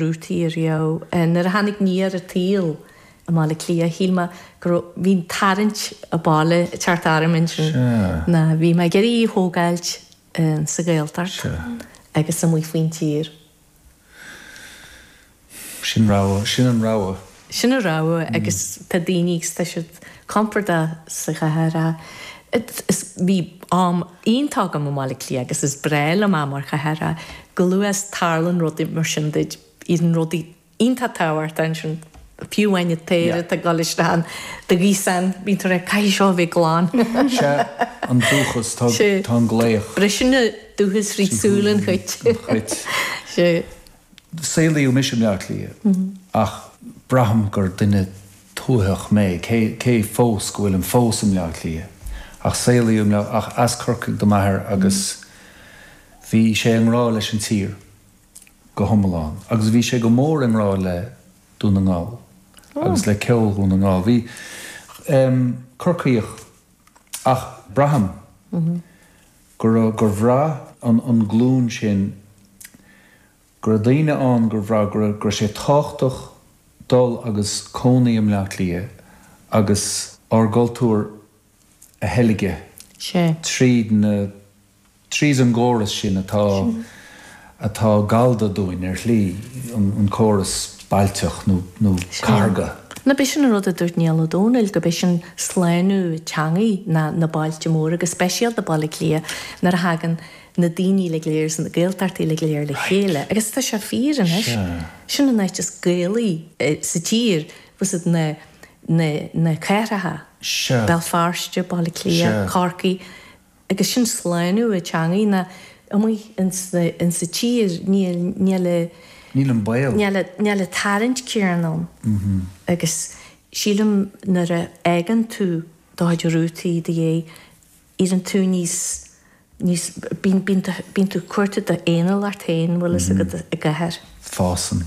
rútaí ariamh. Nuair a tháinig Nia ar an tsaol i mBaile Átha Cliath shíl mé go raibh, bhí an tarraingt abhaile ag teacht orm ansin. Ná bhí mé ag iarraidh í a thógáilt sa Ghaeltacht agus amuigh faoin tír. Sin rogha, sin an rogha. Sin a rogha agus tá daoine ag tuiseint compordach sa chathair. Bhí am iontach agam i mBaile Átha Cliath agus is breá liom an chathair. Chomh luath is tarlann rudaí mar sin duit. Bíonn rudaí iontach tábhachtach ansin, fiú amháin an t-aer atá ag dul isteach in do ghaosán, bíonn tú ag rá caithfidh seo a bheith glan. Sea, an dúchas, tá an glaoch. Briseann an dúchas fríd súil an chait. Saolaíodh mise i mBleá Cliath ach braithim gur duine tuaitheach mé, cé fós go bhfuilim fós i mBleá Cliath. Ach saolaíodh i mBleá, ach as Corcaigh do m'athair agus bhí sé i ngrá leis an tír go hiomlán agus bhí sé go mór i ngrá le Dún na nGall agus le ceol Dhún na nGall. Bhí, em, Corcaíoch. Ach braithim go raibh, gur bhraith an, an glúin sin, go raibh daoine ann gur bhraith go raibh, go raibh sé tábhachtach dul agus cónaí i mBleá Cliath agus ár gcultúr a theilgean tríd na. Tríd an gcóras sin atá atá gallda dúinn ar shlí, an córas bailteach nó cathardha. Nó b'shin an rud a dúirt Niall Ó Dónaill, go b'shin slánú teangaidh ná na bailte móra, go speisialta Baile Átha Cliath nuair a thagann na daoine uilig go léir as na Gaeltachtaí uilig go léir le chéile. Agus tá sé fíor anois. Sin an áit is Gaelaí sa tír, bhfuil fhios agat na na na cathracha, Béal Feirste, Baile Átha Cliath, Corcaigh. Agus sin slánú na teangaidh ná amuigh insa tír níl níl a Níl an baol. níl a níl an tarraingt céanna ann. Agus sílim nuair a fhágann tú do chuid rútaí i do dhéidh éiríonn tú níos níos bíonn bíonn bíonn tú cuarta d'aon uile ort féin bhfuil fhios agat i gcathair. Fásann.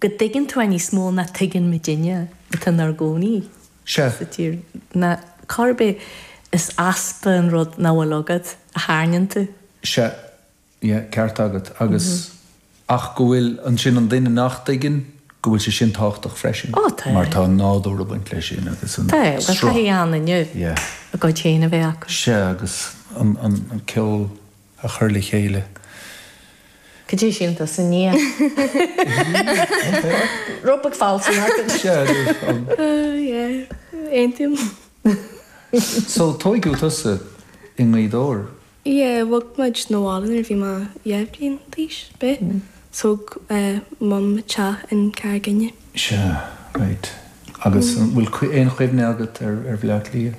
go dtuigeann tú é níos mó ná tuigeann muidinne atá inár gcónaí sa tír, ná cá bith, is easpa an rud nach bhfuil agat a tharraingeann tú. Sea, yeah, ceart agat, agus, ach go bhfuil, ansin an duine nach dtuigeann, go bhfuil sé sin tábhachtach freisin. Ó, tá. Mar tá an nádúr ag baint leis sin agus an sruth. Tá, tá taithí ann inniu, a gcuid féin a bheith acu. Sea, agus an, an, an ceol. a chur le chéile. Cad é sin do sa ndiaidh? Rob ag fáiltiú againn. Sea, Rob. Yeah, aontaím. So tóigeadh tusa i nGaoth Dobhair? Yeah, bhog muid 'na bhaile nuair a bhí mé deich mbliana d'aois, b'é? Thóg Mum teach i gCarraig Fhinne. Sea, right. Agus an bhfuil aon chuimhne agat ar Bhleá Cliath?